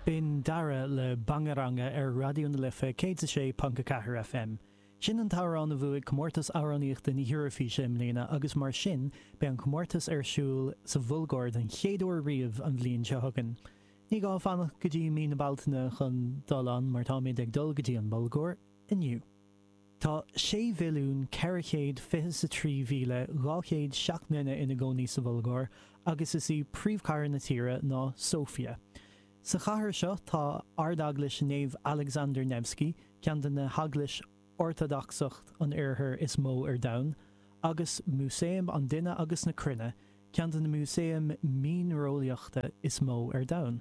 B'in Dara le Bangaranga ar Raidió na Life 106.4 FM. Sin an t-amhrán a bhuaigh Comórtas Amhránaíochta na hEoraifíse i mbliana agus mar sin beidh an comórtas ar siúl sa Bhulgáir den chéad uair riamh an bhliain seo chugainn. Ní gá fanacht go dtí mí na Bealtaine chun dul ann mar táimid ag dul go dtí an Bhulgáir inniu. Tá 6,423,200 seacht nduine ina gcónaí sa Bhulgáir agus is í príomhchathair na tíre ná Sofia. Sa chathair seo tá Ardeaglais Naomh Alexander Nevsky, ceann de na heaglaisí Ortadacsacha an Oirthir is mó ar domhan, agus Músaem an Duine agus na Cruinne, ceann de na músaeim mianreolaíochta is mó ar domhan.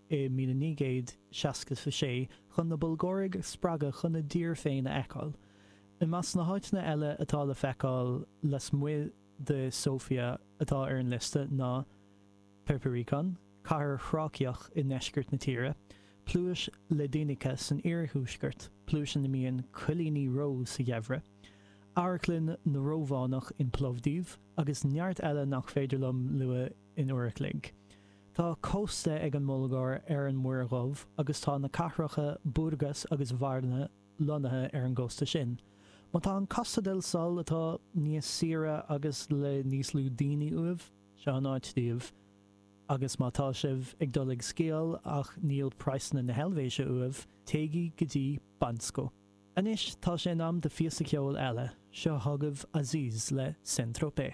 i 1966 chun na Bulgáraigh a spreagadh chun a dtír féin a fheiceáil. I measc na háiteanna eile atá le feiceáil lasmuigh de Sofia atá ar an liosta ná Perperikon, cathair Thráiceach i ndeisceart na tíre, Pluais Ledenica san iarthuaisceart, pluais ina mbíonn coilíní reo sa gheimhreadh, Amharclann na Rómhánach in Plovdiv, agus neart eile nach féidir liom a lua in uair a chloig. Tá cósta ag an mBulgáir ar an Muir Dhubh agus tá na cathracha Burgas agus Varna lonnaithe ar an gcósta sin. Má tá Costa del Sol, atá níos saoire agus le níos lú daoine uaibh, seo an áit daoibh. Agus má tá sibh ag dul ag sciáil ach níl praghsanna na hEilvéise uaibh, téigí go dtí Bansko. Anois tá sé in am do phíosa ceoil eile, seo chugaibh Azis le Saint Tropez.